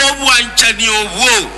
obwanchani obwo,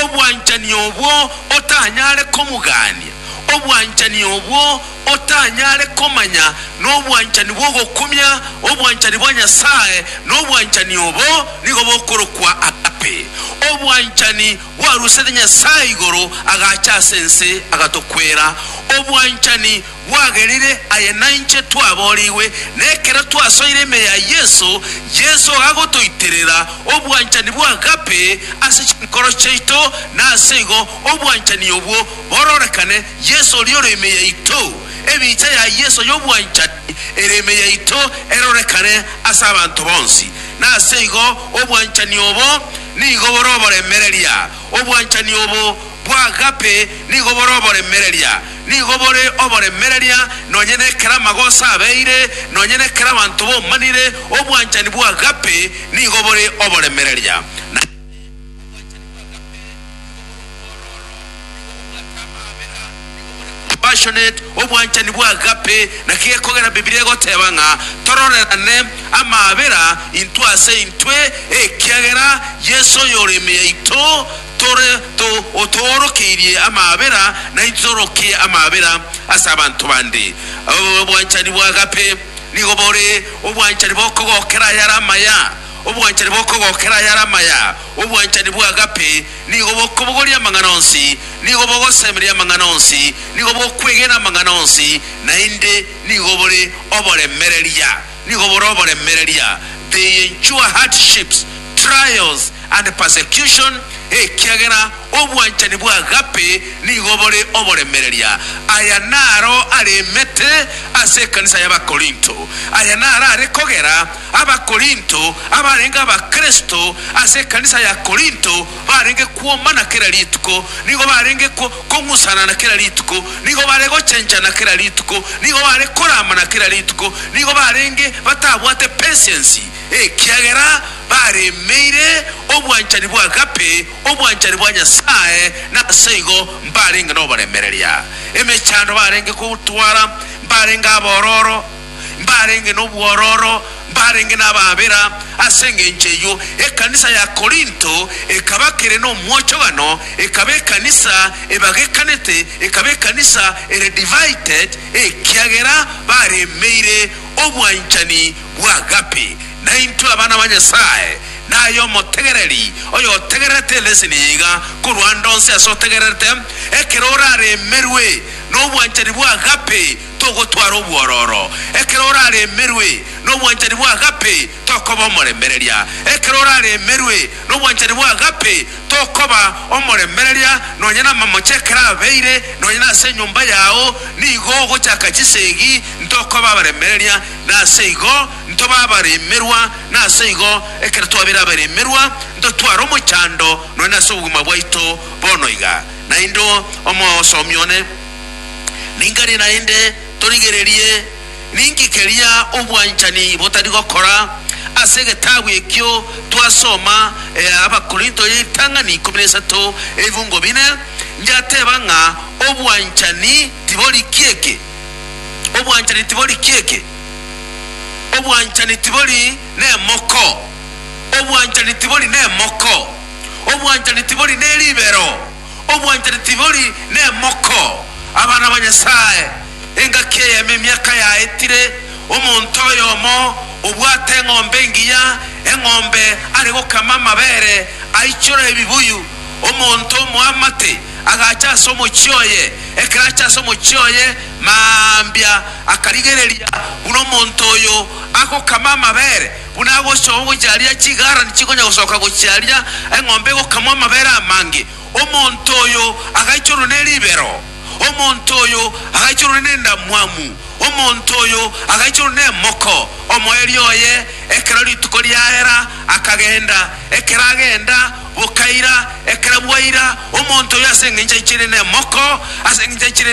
obwanchani obwo otanyare komogania, obwanchani obwo otanyare komanya, nobwanchani bw'ogokumia obwanchani bwa Nyasae, na obwanchani obo nigo bokorokwa agape, obwanchani bwarusete Nyasae igoro agacha ase ense agatokwera, obwanchani bwagerire aye nainche twaboorigwe, na ekero twasoire ime ya Yeso, Yeso agotoiterera obwanchani bw'agape ase chinkoro chiaito, na ase igo obwanchani obwo bororekane Yeso oria ore ime yaito, ebicha ya Yeso y'obwanchani ere ime yaito erorekane ase abanto bonsi. Na ase igo obwanchani obo nigo bore oboremereria, obwanchani obo Bw'agape nigo bore oboremereria, nigo bore oboremereria nonye nekero amagoso abeire, nonye nekero abanto bomanire, obwanchani bw'agape nigo bore oboremereria. Na obwanchani bw'agape nigo bore omwororo, nigo bobwate amaabera, nigo bore compassionate. Obwanchani bw'agape naki gekogera Bibilia egoteba ng'a tororerane amaabera intwe ase intwe, ekiagera Yeso oyore ime yaito. tore to, otoorokeirie amaabera, naintwe torokie amaabera ase abanto bande. O, obwanchani bwa agape nigo bore obwanchani bokogokera ayare amaya, obwanchani bokogokera ayare amaya. Obwanchani bwa agape nigo bokobogoria amang'ana onsi, nigo bogosemeria amang'ana onsi, nigo bokwegena amang'ana onsi, naende nigo bore oboremereria. Nigo bore oboremereria, they endure hardships, trials, and persecution, ekiagera obwanchani bw'agape nigo bore oboremereria. Aya naro aremete ase ekanisa y'Abakorinto. Aya naro are kogera Abakorinto abarenge Abakristo ase ekanisa ya Korinto barenge kwomana kera rituko. Nigo barenge. komusanana kera rituko, nigo bare gochenchana kera rituko, nigo bare koramana kera rituko, nigo barenge batabwate patience, ekiagera baremeire obwanchani bwa agape, obwanchani bwa Nyasae, na ase igo mbarenge noboremereria. Emechando barenge kotwara mbarenge abororo. mbarenge nobwororo, mbarenge nabaabera. Ase engencho eyio ekanisa ya Korinto ekaba kere nomwochogano, ekaba ekanisa ebagekanete, ekaba ekanisa ere divided, ekiagera baremeire obwanchani bw'agape. Naintwe abana ba Nyasae, naye omotegereri oyotegererete eleseni eye iga, korwa ande onsi ase otegererete, ekero oraremerwe nobwanchani bw'agape, Togotwara obwororo ekero oraremerwe, na obwanchani bw'agape tokoba omoremereria. Ekero oraremerwe nobwanchani bw'agape, tokoba omoremereria nonya namamoche ekero abeire nonya nase enyomba yao, nigo ogochaka chisegi, ntokoba abaremereria, nase igo ntoba abaremerwa. Nase igo, ekero twabeire abaremerwa, ntotware omochando nonya nase obogima bwaito bono iga. Naende omosomi one. Ninkari naende torigererie ninki keria obwanchani botari gokora. Ase egetabu ekio twasoma ea Abakorinto ya Ritang'ani ikomi na isato ebifungo bine, ngiateba ng'a obwanchani tibori kieke. Obwanchani tibori kieke. Obwanchani tibori nemoko. Obwanchani tibori nemoko. Obwanchani tibori neribero. Obwanchani tibori nemoko, abana ba Nyasae. Engaki eyemo emiaka yaetire, omonto oyomo obwate eng'ombe engiya, eng'ombe are gokama amabere, aichora ebibuyu. Omonto omoamate agacha ase omochie oye, ekero acha ase omochie oye mambia akarigereria buna omonto oyo agokama amabere. Buna agosoa ogochia aria chigarani chikonya gosoka gochia aria eng'ombe egokamwa amabere amange, omonto oyo agaichorwe ne ribero, omonto oyo agaichorwe nendamwamu, omonto oyo agaichorwe nemoko. Omoerio oye, ekero rituko riaera, akagenda, ekero agenda, bokaira, ekero bwaira, omonto oyo ase engencho aichire nemoko, ase engencho aichire.